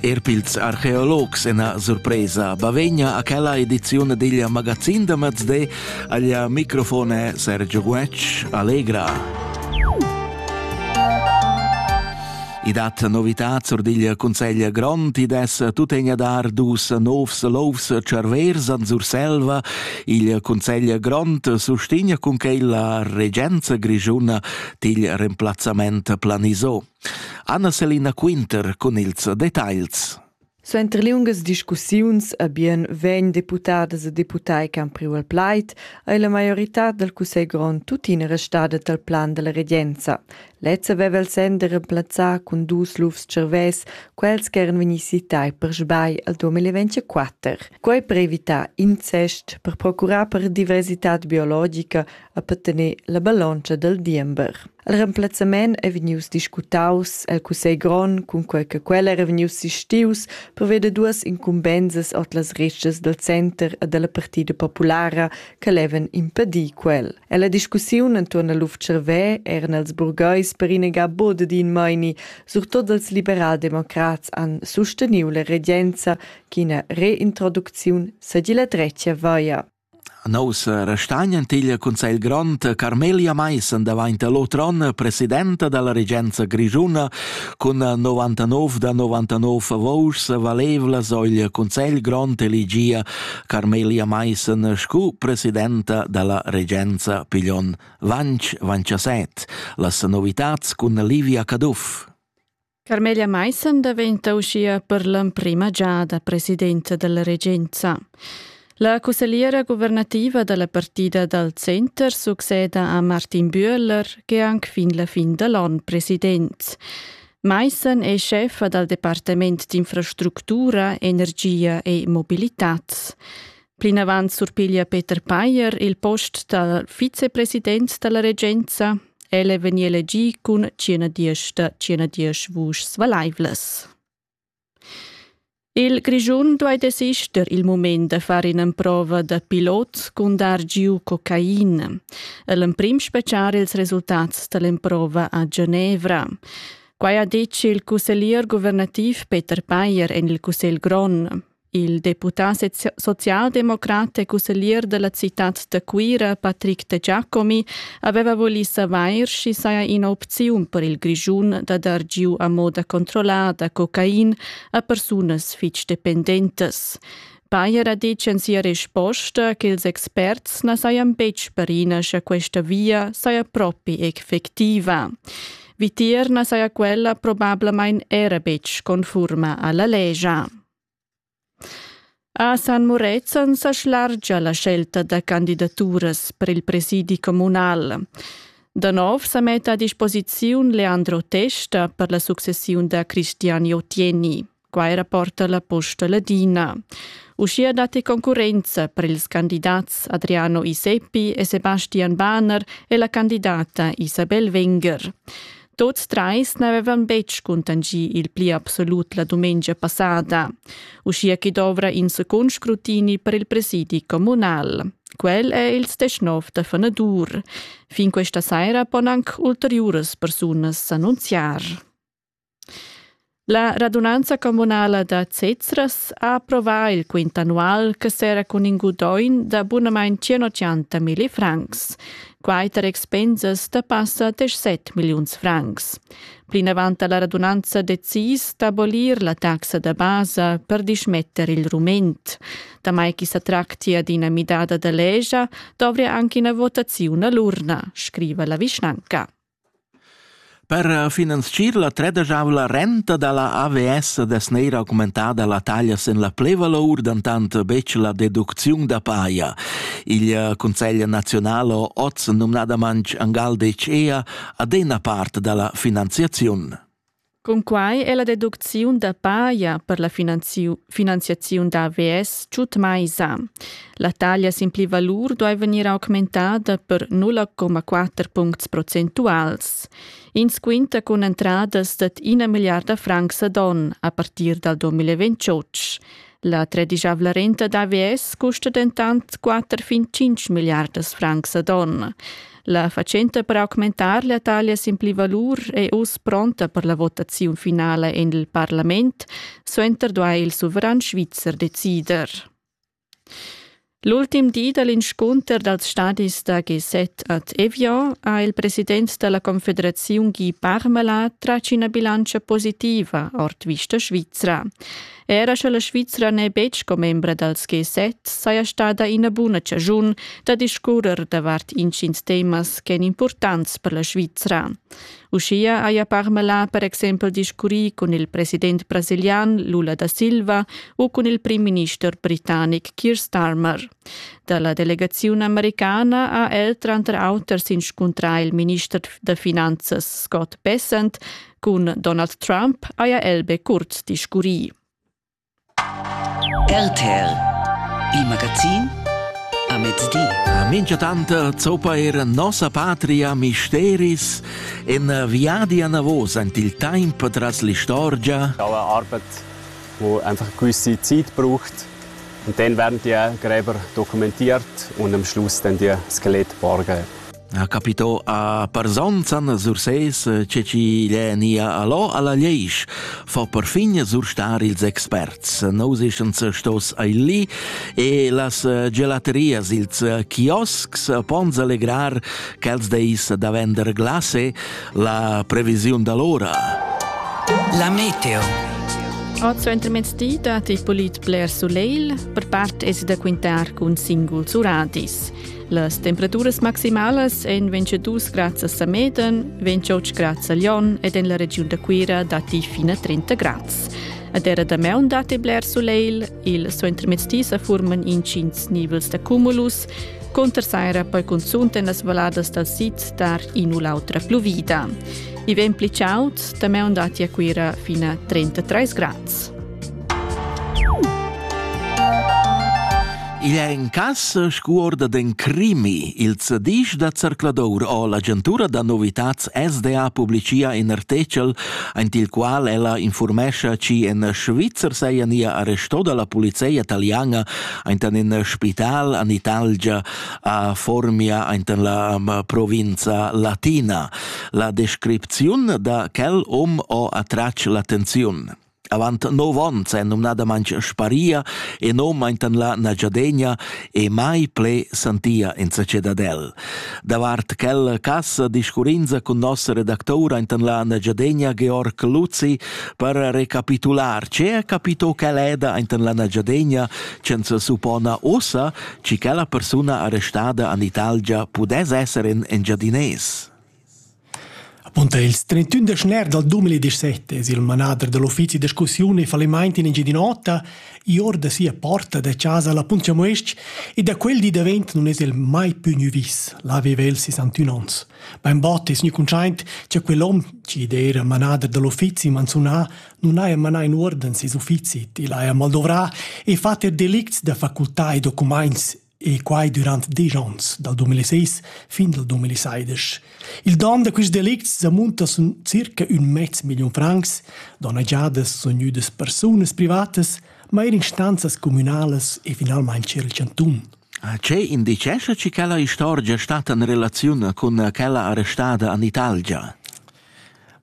Er pils archeologs ena surpresa. Bavegna a quella edizione digl magazin da Mazdé aglia microfone Sergio Guetsch Allegra. I dat novità zur digl Consegl Grond, i des tutegna dar dus novs lovs cervers an Surselva. Il Consegl Grond sustigna cun quei la regenza grigiuna til remplazzament planiso. Anna Selina Quinter cun ils detagls. Suenter liungas discussiuns e bien vegn deputadas e deputai che han priu il plaid ei la maioritad dal cussegl grond tuttina restada dal plan dalla regenza. Lezza veva il senn de remplazzar cun dus lufs cervès quels che eran vegni citai per sbai al 2024. Quei per evitar incest, per procurar per diversitad biologica a patener la ballontscha dal diember. Il remplazzament è vegnius discutaus el Cussegl grond cun quei che quel era vegnius sistius per veder duas incumbensas ord las retschas dal center e dalla partida populara che levan impedir quel. E la discussiun entuorn al Luf-Cervè eran als burgheis per innegar bod d'in meini, surtot als liberaldemocrats han susteniu la regenza ch'ina reintroducziun sedi la dretga vaia. Nossa restagnan teglia cun sa il grond Carmelia Maissen davanti all'otro onn presidenta dalla regenza grischuna cun 99 da 99 vouschs valevlas ogl Consigl grond elegia Carmelia Maissen scu presidenta dalla regenza piglion Vanch Vanchaset. Las novitats cun Livia Caduff. Carmelia Maissen daventa uschia per l'emprima giada presidenta della regenza. La cussegliera guvernativa della partida dal center succeda a Martin Bühler, che anche fin la fin dall'on president. Maissen è chefa dal Departement d'infrastruttura, energia e mobilità. Plinavant surpiglia Peter Payer il post da vicepresident dalla regenza. El è vegnì elegì cun 110 da 110 vuschs valaivlas. Il Grischun duai desister il mument da far in'emprova da pilot cun dar giu cocaina. El emprim speciar ils resultats dall'emprova a Genevra. Quai ha ditg il cusseglier guvernativ Peter Payer en il Cussegl Grond. Il deputà socialdemocrat e cusseglier della citad da Cuira, Patrick de Giacomi, aveva voli savair schi saja ina opziun per il Grischun da dar giu a moda controllada cocain a persunas fitg dependentas. Bayer ha detg en sia risposta che ils experts na sajan betg perina sche questa via saja propi effectiva. Vitier na saja quella probablamain era betg conforma alla legia. A San Murezzan sa schlargia la scelta da candidaturas per il presidi communal. Da nov sa metta a disposiziun Leandro Testa per la successiun da Cristian Jotieni. Quai rapporta la Posta Ladina. Uschia datti concurrenza per ils candidats Adriano Iseppi e Sebastian Bahner e la candidata Isabel Wenger. Tuts trais n'avevan betg cuntanschì il pli absolut la dumengia passada, uschia ch'i dovra in secund scrutini per il presidi communal. Quel è il sdeschnov da fanadur. Fin questa saira pon anc ulteriuras persunas s'annunziar. La radunanza communala da Zezras ha approvà il quint annual che serra cun in gudaugn da bunamain 180 milli francs, quai tar expensas da passa 17 milliuns francs. Plinavant ha la radunanza decis d'abolir la taxa da basa per dismetter il rument. Damai che sa tractia d'ina midada da legia, dovria anche una votazione all'urna, scriva la vischnanca. Per finanzchir la tredegiavla renta da la AVS dess neir augmentada la taglia sin la plevalour, dentant betg la deducziun da paja. Il Cunsegl nazional ha oz numnadamain angal detg ea ad ena part da la finanziaziun. Cunquai è la deducziun da paja per la finanziaziun da AVS tut mai sa. La taglia sin pli valur duai vegnir augmentada per 0,4 puncts procentuals. Ins quinta cun entradas dad ina milliarda francs ad onn a partir dal 2028. La tredisavla renta d'AVS custa dentant 4 fin 5 milliardas francs ad onn. La fatschenta per augmentar la taglia sin pli valur è uss pronta per la votaziun finala en il parlament. Suenter duai il suveran svizzer decider. L'ultim di dall'inscunter dals stadis da G7 ad Evian ha il president della Confederaziun Guy Parmelin tratg ina bilancia positiva ord vista svizra. Era sche la Svizra n'è betg sco membra dals G7, saja stada ina buna chaschun da discurrer davart intgins temas ch'èn impurtants per la Svizra. Uschia haja Parmelin per exempel discurrì cun il president brasilian Lula da Silva u cun il prim-minister britannic Keir Starmer. Da la delegaziun americana ha el tranter auter s'inscuntrà il minister da finanzas Scott Bessent Cun Donald Trump haja el be curt discurrì. RTL Il magazin a mezdi. A minchatant zoppa er nossa patria misteris en viadi anavos ant il temp tras l'istorgia. Alle Arbeit, wo einfach eine gewisse Zeit braucht. Und dann werden die Gräber dokumentiert und am Schluss dann die Skelett borgen. ha capitò a Parzonzan sur ses che chi l'è nia allò alla Leisch, fa perfin surstar ils experts. Nous ischens stos ai lì e las gelaterias, ils kiosks pons allegrar quels deis da vender glase la previsiun d'allora. La meteo. Oz intermezdi datti polit bler sulegl, per part es da quintar cun singuls uradis. Las temperaturas maximalas èn 22 grads a Sameden, 28 grads a Lyon ed en la regiun da Cuira datti fin a 30 grads. A terra da maun datti bler sulegl, il suentermezdi sa furman intgins nivels da cumulus, Conter saira poi cunzunt en las valladas dal sid dar in u l'autra pluvida. I vegn pli chaud, da maun datti a Cuira fino a 33 grads. Igl è in cass scuorda den crimi. Il zedisch da zercladour o l'agentura da novitats SDA publicia in artechel, aint il qual ella informescha chi en Schweizer seia nia arresto dalla polizia italiana aintan in spital an Italgia a Formia aintan la provinza latina. La descripziun da quel om o attrac l'attenziun. Avant nov onns è numnadamain sparia e non maintan la nagiadegna e mai ple santia insatge dad el. Davart quella cassa discurrinza cun nossa redactora intan la nagiadegna Georg Luzi per recapitular ce capito quel eda intan la nagiadegna censa suppona ossa ci quella persona arrestada an Italgia pudess esser in engiadines. Apunta ils 31 da schner dal 2017 es il manader da l'uffizi da discussiun e fallimaint in Engiadin'Ota ior da sia porta da chasa la Puntchamues-ch e da quel di davent nun es el mai pü gnü vis, là aveva el 61 ons. Bainbod es gnü cuntschaint cha quell'hom chi d'eira manader da l'uffizi manzunà nun haja manà in uorden seis uffizi til haja maldovrà e fat er delicts da facultà e documaints e quai durant diesch onns, dal 2006 fin dal 2016. Il don da questi delicts sa munta sun circa un mez million francs, donnagiadas sun gnüdas persunas privatas, ma eir instanzas communalas e finalmaing c'era il chantun. Ce indicescha chi quella istorgia stat in relaziun cun quella arrestada in Italgia?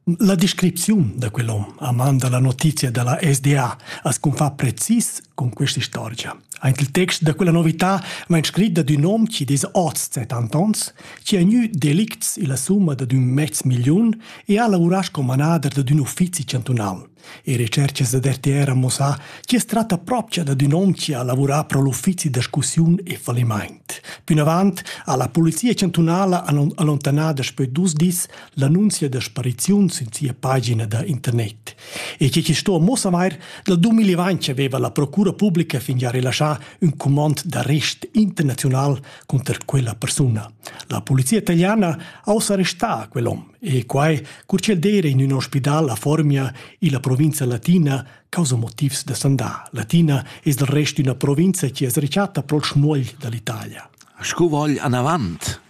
La descripziun da quel hom a man dalla notizia dalla SDA as confà precis con questa istorgia. Anche il text da quella novità vain scrit da ün hom chi dess oz 70 ans, chi ha gnü delicts illa summa da ün mezz milliun e ha lavurà sco manader dad ün uffizi chantunal. E recerchas da RTR han mussà chi as tratta propcha dad ün hom chi ha lavurà pro l'uffizi da scussiun e fallimaint. Pünavant ha la Polizia chantunala allontanà daspö dus dis l'annunzia da spariziun sün sia pagina da internet. E che sto muossavair dal 2020 aveva la procura pubblica fingià rilascià ün comand d'arrest internazional conter quella persuna. La polizia italiana ha ussa arrestà quell'hom. E quai cur ch'el d'eira in ün ospidal a Formia illa provinza latina causa motivs da sandà. Latina es del rest üna provinza chi es rechatta pro'l schmuogl da l'Italia. Scu vogl anavant?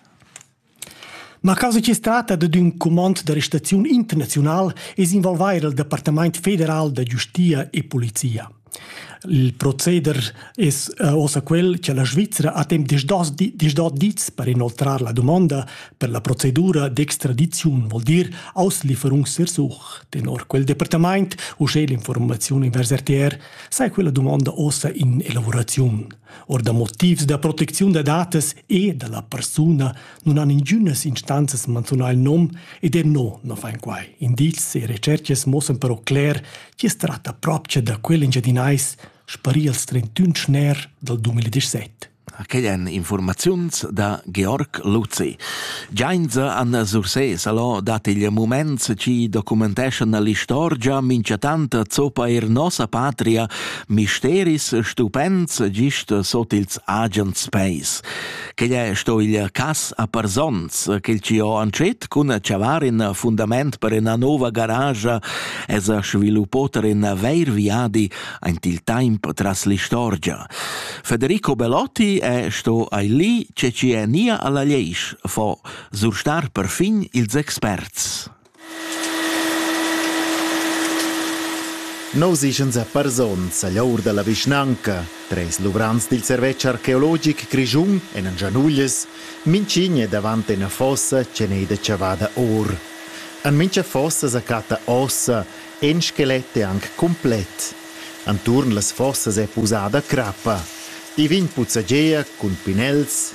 Ma causa chi es tratta dad ün cumand da restaziun internaziunal es involvair il Departamaint federal da giustia e polizia. Il proceder es uossa quel cha la Svizra ha temp disdós disdò dis per inoltrar la dumonda per la procedura d'extradiziun, voul dir Auslieferung sersuch. Tenor quel departamaint, uschè l'informaziun invers RTR, saja quella dumonda uossa in elavuraziun. Or da motivs da protecziun da datas e da la persuna nun han ingünas instanzas manzunà il nom ed er no non fain quai. Indizs e retscherchas mossan però cler Chi's tratta propcha da quel Engiadinais sparì als 31 schner dal 2017. Quai èn informaziuns da Georg Luzi. Giainza an Sursés alò dat il mument ci documenteschan l'istorgia minchatant zoppa er nossa patria misteris stupends gist sot ils agens peis. Quel è sto il cas a Parzons, quel ci ho antschet cun chavar in fundament per ina nova garage es sviluppato in vair viadi aint il temp tras l'istorgia. Federico Belotti è sto ai lì, ce ci è nia alla leisch, fo surstar perfin ils experts. Nus eschan sa parsonz agl aur dalla vischnanca. Treis luvrants dil servetsch archeologic grischun en Gianuglies, mintgin è davant ina fossa ch'en ei da chavada or. En mintga fossa sa catta ossa, in skelet è anc cumplet. Enturn las fossas è pusada crappa. I vegn puzzagea cun pinels,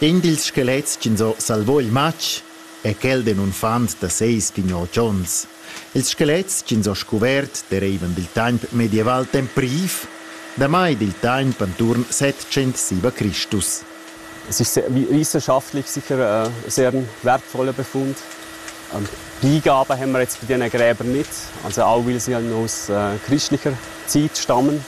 In dils skelets ch'ins ho salvò il matg è quel d'ün unfant da seis pign-ot ons. Ils skelets ch'ins ho scuvert dereivan dil temp medieval tempriv, damai dil temp anturn settschentsiva Cristus. Es ist sehr, wissenschaftlich sicher ein sehr wertvoller Befund. Ähm, die Gabe haben wir jetzt bei den Gräbern nicht, also auch weil sie ja aus äh, christlicher Zeit stammen.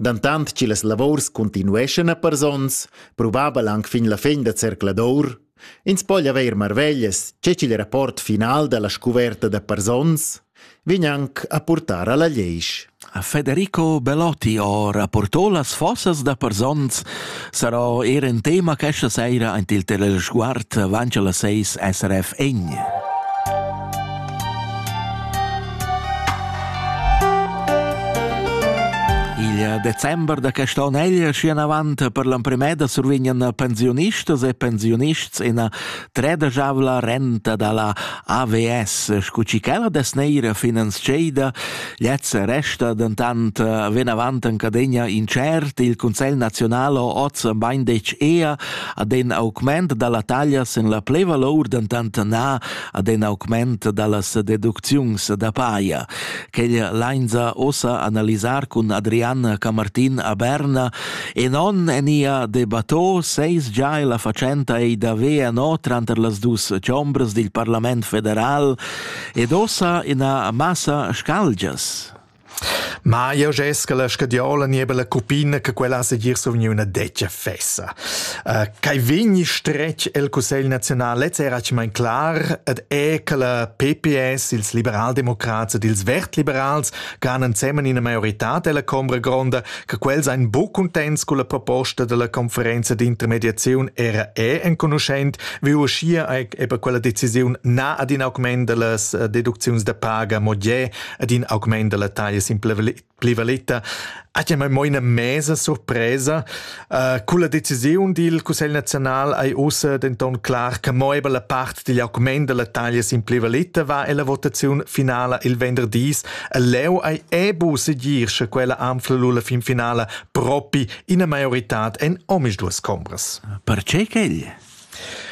Dantant chi las lavors cuntinueschan a pars ons, probabel anc fin la fin da zercladur, ins po haver marveglias che ch'il rapport final dalla scuverta da pars ons vegn anc a purtar alla leisch. A Federico Belotti ho rapporto las fossas da pars ons Sarò eir in tema questa saira aint il Telesguard avanti alla 6 SRF Egn. Il december da quest'on egl schi avant per l'emprimeda survignan pensionistas e pensionists ina tredajavla renta dalla AVS, scu chi quella des neira finanzcheida Lezza resta dentant eh, venavant en cadegna incert. Il Consiglio nazionale oz bain dec ea ad en augment dalla taglia sen la pleva lor dentant na ad en augment dallas deducziuns da paia. Quel lainza ossa analisar cun Adrian Camartin a Berna e non en ia debattò seis già e la facenta ei da vea no tranter las dus chambres dil Parlament federal Ed ossa ina massa scalgias. Ma io gest che la scadiola nieba la cupina che quella se gir suvgni una deccia fessa. Uh, kai vegni stretg el Cussegl Nazional ez era mein klar, et è che la PPS, ils liberaldemocrats ed ils vertliberals gan ensemen ina maioritad della combra gronda, che quels ein bu contents con la proposta della conferenza di intermediazione era è enconuschent, wie uschia eben quella decisione na ad in augment dellas eh, deduczions da paga moglier ad in augment della taglia simplivaletta Ah, ma mo ina mesa surpresa. Uh, con la decisiun dil Cussegl nazional hai ussa denton clar che mo la part digl argument della taglia simplivalita va ella votaziun finala il venderdis. E leu hai ebu segir sche quella anfla la fin finala propi ina maiorità en omis duas combras. Perché quegl?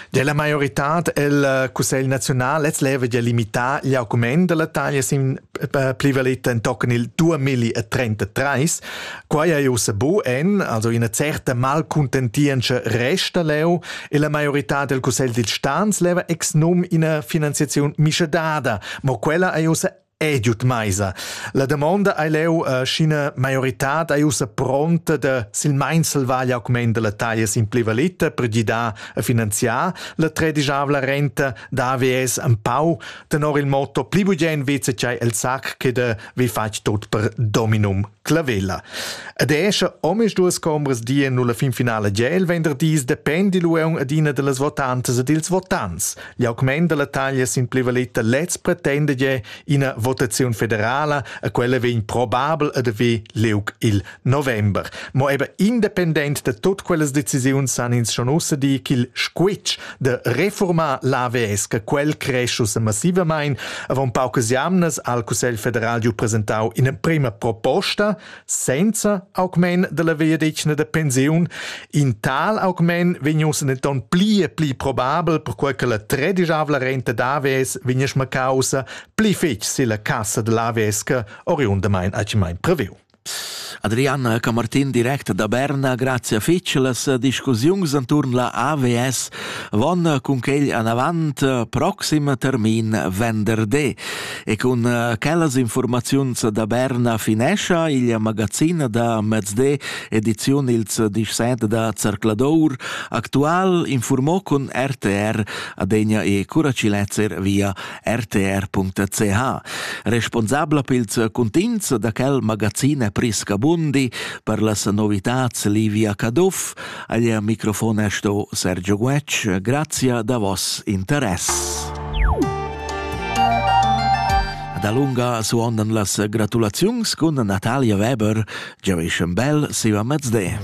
Della maioritad el cussegl naziunal lez leva gia limitar gli augment della taglia sin plivaletta entochen il 2033. Quai ei ussa bu en, also ina certa malcontentientscha resta leu e la maioritad del cussegl dil stans leva ex num ina finanziaziun mischadada, mo quella ei ussa Ed giud meisa. La damonda ei leu, uh, sch'ina maioritad ei ussa pronta da silmein salvar gli augment dalla taglia sin plivalita per gidar a finanziar la tredisavla renta da AVS empau, tenor il motto pli bugen VCC el sac che da vi fatg tot per dominum clavella. Ed esce omes duas combres die nulla fin finale gel venderdis dependi lu adina dallas votantas e dils votants, L'augment dalla taglia sin plivaleta lez pretenda je ina votaziun federala e quella vegn probabel ad haver liug il november. Mo eben independent de tut quellas decisiuns san ins schon ussa dir ch'il squitsch de reformar l'AVS che quel cresce ussa massivamain avon paucas jamnas al Cussegl federal giu presentau ina prima proposta Senza augment della vegliadetgna da pensiun, in tal augment vegnuss denton pli e pli probabel, perquei che la tredisavla renta d'AVS vegniss macausa pli fetg silla cassa dell'AVS oriundamain accimain previu. Adriana Camartin direct da Berna, grazia fetg. Las discussiuns enturn la AVS van cun quel anavant proxim termin venderdi. E cun uh, quellas informaziuns da Berna finescha il magazin da mezde ediziun ils disset da Zercladour actual informò con RTR adegna e curaciletzer via rtr.ch. Responsabla pils contins da quel magazin è Prisca Bundi per las novitats Livia Caduff, Ad ir microfon è sto Sergio Guetg. Grazia da vos interess. Da lunga suondan las gratulaziuns cun Natalia Weber, Joey Bell, Siva Mezde.